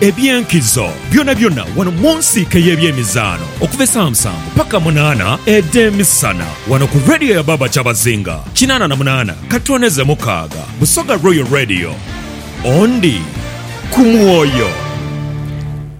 Eby'enkizo byonabyona wano mu nsiike ey'ebyemizaano okuva esaa musanvu paka munaana edh'emisana wano ku Radio ya Baaba Kyabazinga kinaana na munaana katooneze mukaaga Busoga Royal Radio ondi ku mwoyo.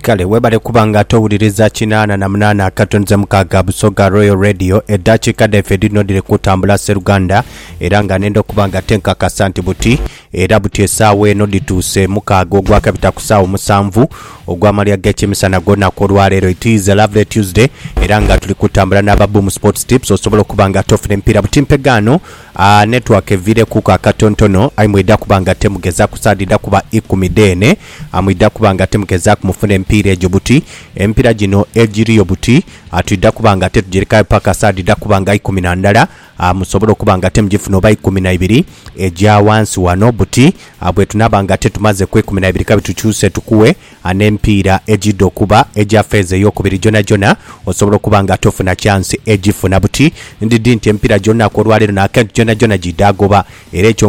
Kale webale kuba nga towuliriza kinaana na munaana akatonze mukaaga Busoga Royal Radio edaakiika dhaife edhinodhire kutambula sseruganda era nga nenda okuba nga tenkakasa nti buti Era buti esaawa eno dhituuse mukaaga ogwakabita ku saawa omusanvu ogw'amalya g'ekimisana ag'olunaku olwa leero. It is a lovely Tuesday era nga tuli kutambula n'aba Boom Sports Tips osobola okuba nga ate ofuna emipiira buti mpe gaano. Aah network eviirekuku akatontono aye mwidha kuba nga ate mugezaaku saha dhidha kuba ikumi dheene mwidha kuba nga ate mugezaaku mufuna emipiira egyo buti. Emipiira gino egiriyo buti twidha kuba nga ate tugirekayo paka saha dhidha kuba nga ikumi na ndala. A Musobola okuba nga te mugifuna oba ikumi na ibiri egya wansi wano buti a bwetunaaba nga te tumaze ku ikumi na ibiri kabi tukyuse tukuwe a n'emipiira egidha okuba egya feeza ey'okubiri gyonagyona osobola okuba nga tofuna kyansi egifuna buti ndidhi nti emipiira gy'olunaku olwaleero n'akentu gyonagyona gidha goba era ekyo